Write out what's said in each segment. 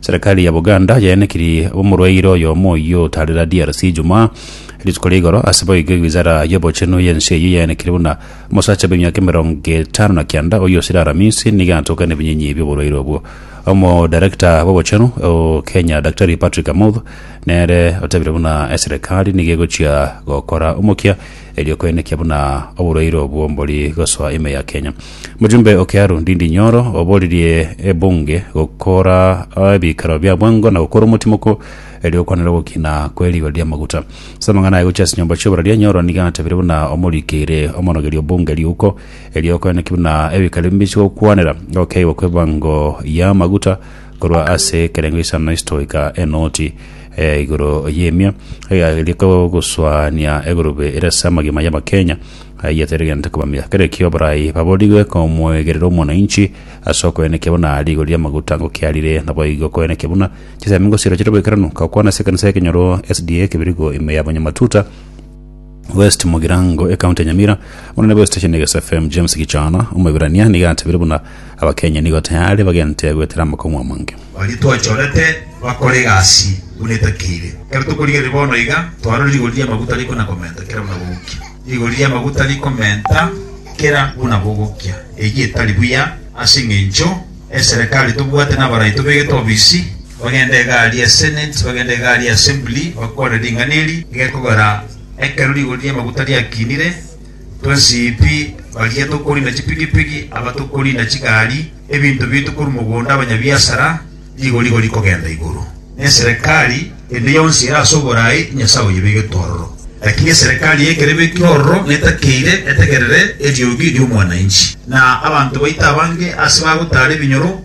Serekari ya Buganda yaenekiri omorwaire oyomo oyio otarera DRC Ijumaa rituko ria igoro. Ase boigo ewizara y'obochenu y'ense eyio yaenekire buna omosacha bw'emiaka emerongo etano na kianda oyio osire aramisi nigo atoka nebinyinyi bi'oborwaire obwo. Omodarekta bw'obochenu o Kenya Daktari Patrick Amoth nere otebire buna eserekari nigo egochia gokora omokia erio kwenekia buna oborueiro bw'ombori gosoa ime ya Kenya. Mojumbe o Kiaru Ndindi Nyoro oboririe ebunge gokora ebikaro bia bwango na gokora omotimoko erio okwanera ogokina kwe rigori ria maguta. Ase amang'ana aye gochia ase nyomba chi'oboraria Nyoro nigo atabire buna omorikeire omonogeria obunge riuko erio kwenekia buna ebikaro ebi bichia gokwanera ogokeigwa kwebango y'amaguta korwa ase ekerengo isano ase toika enoti eh, igoro y'emia egairia kogoswania egurube ere ase amagima y'abakenya ayiateregente kobamia kere ekio barai baborigwe komwegerera omwananchi ase okoenekia buna rigori ri'amaguta ngokiarire naboigo koenekia buna chisemi ngosiro chire boikeranu gakwana ase ekanisa y'ekenyoro sda kebirigo ime y'abanyamatuta West Mugirango, ecounty ya Nyamira. Omonene bwe station ya Gesa FM James Gichana Omoibirania nigo atebire buna Abakenya nigo tayari bagente goetera amakong'u amange. Baria twachorete bakore egasi buna etakeire. Ekero tokorigereria bono iga, twarorire rigori ri'amaguta riko na komenta kera buna bogokia. Rigori ri'amaguta rikomenta kera buna bogokia. Eyio etari buya ase engencho eserekari tobwate na abarai tobegete obisi. bagende egari ya Senate, bagende egari ya Assembly, bakwane ring'ana eri gekogera ekero rigori ri'amaguta riakinire, twensipi baria tokorina chipigipigi, aba tokorina chigari, ebinto biaito korwa mogondo, abanyabiasara, rigori igo rikogenda igoro. Na eserekari ende yonsi ere ase oboraai, Nyasae oyebegetwe ororo. Lakini eserekari yaikera ebekire ororo netakeire etegerere eriogi ri'omwanainchi, na abanto baito abange ase bagotaara ebinyoro,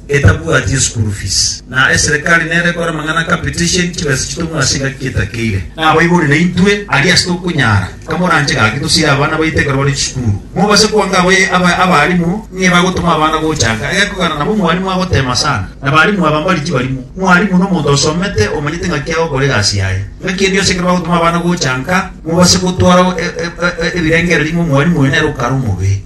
etabwati eschool fees, na eserekari nere ekore amang'ana capitation chibesa chitong'we ase engaki getakeire. Nabaibori naintwe aria ase tokonyara, kamoranche gaki tosire abana baito ekero bare chisukuru, mobase kwanka aba aba abalimu ng'a ebagotoma abana gochanka egekogera nabo mwalimu agotema sana. Abalimu aba mbari chibarimo. Mwalimu nomonto osomete omanyete ng'aki agokora egasi yaye. Ng'aki eria yonsi ekero bagotoma abana gochanka, mobase gotwara e e e ebirengererio ng'a omwalimu oyo nere okare omobe.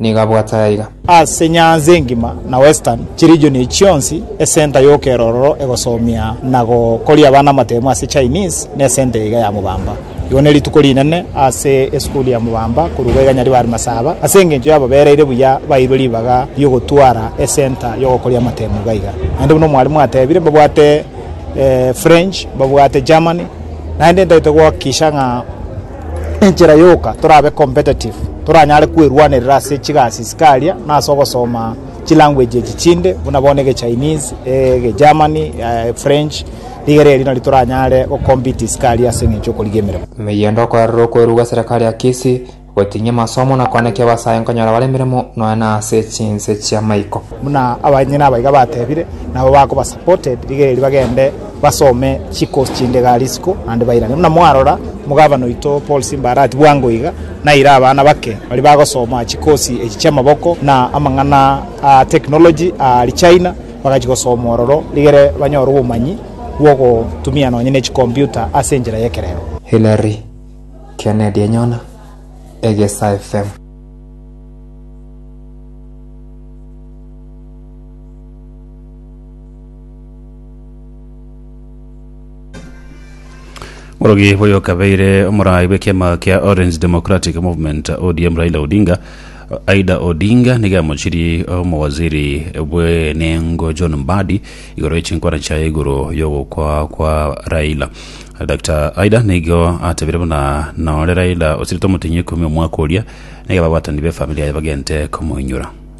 nigo abwate aiga. Ase nyanza engima na western chiregion echi chionsi, esenta y'okerororo egosomia na gokoria abana amatemo ase Chinese nesenta eyaiga ya mobamba. Igo nerituko rinene ase esukuru ya mobamba korwa iga iganyari bari masaba ase engencho yababereire buya bairwe ribaga riogotwara esenta yogokoria amatemo iga iga. Naende buna omwalimu atebire babwate French, babwate Germany naende ntaete goakikisha ng'a. Enchera yoka torabe competitive, toranyare kwerwanerera ase chigasi chikaria na ase ogosoma chilanguage echi chinde buna bono egeChinese, egeGerman, eFrench, rigere erio nari toranyare gocompete isiko aria ase eng'encho y'okorigia emeremo. Emeyendo okorerera okweru gwa serikali ya Kisii, gotinyia amasomo na koanekia abasae nkonyora bare emeremo nonya na ase chinse chiamaiko. Buna abanyene abaiga batebire, nabo bakoba supported rigere erio bagende basome chikosi chinde iga Arisiko, naende bairane. Buna mwarora, omogabana oito Paul Simba arati bwango iga, naire abana bake baria bagosoma chikosi echi chi'amaboko na amang'ana a technology a Richina, bagachia gosoma ororo rigere banyore obomanyi bw'ogotumia nonye ne chikomputa ase enchera y'ekerero. Hillary Kennedy enyona egesa FM. Omorogi boyo okabeire omorai bw'ekiama kia Orange Democratic Movement ODM Raila Odinga Aida Odinga nigo amochiri omowaziri bw'enengo John Mbadi igoro y'echinkwana chiaye igoro y'ogokwa kwa Raila Dr Aida nigo atebire buna nore Raila osirete omotinyia ikomi omwaka oria nigo ababwatani b'efamili yaye bagente komoinyora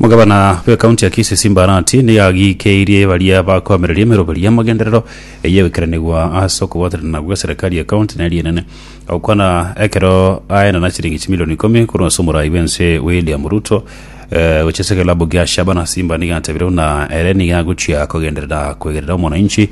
Omogabana bw'ekaunti ya Kisii Simba Arati nigo agikeirie baria bakoamereria emeroberio y'amagenderero eyegoikeranigwa ase okobwatanana gwa eserikari ya kaunti na eria enene agokwana ekero aye na chiringi chimilioni ikomi korwa ase omorai bw'ense William Ruto eh, gochia ase ekelabũ gia Shabana Simba nigo atebire buna ere nigo agochia kogenderera kwegerera omwananchi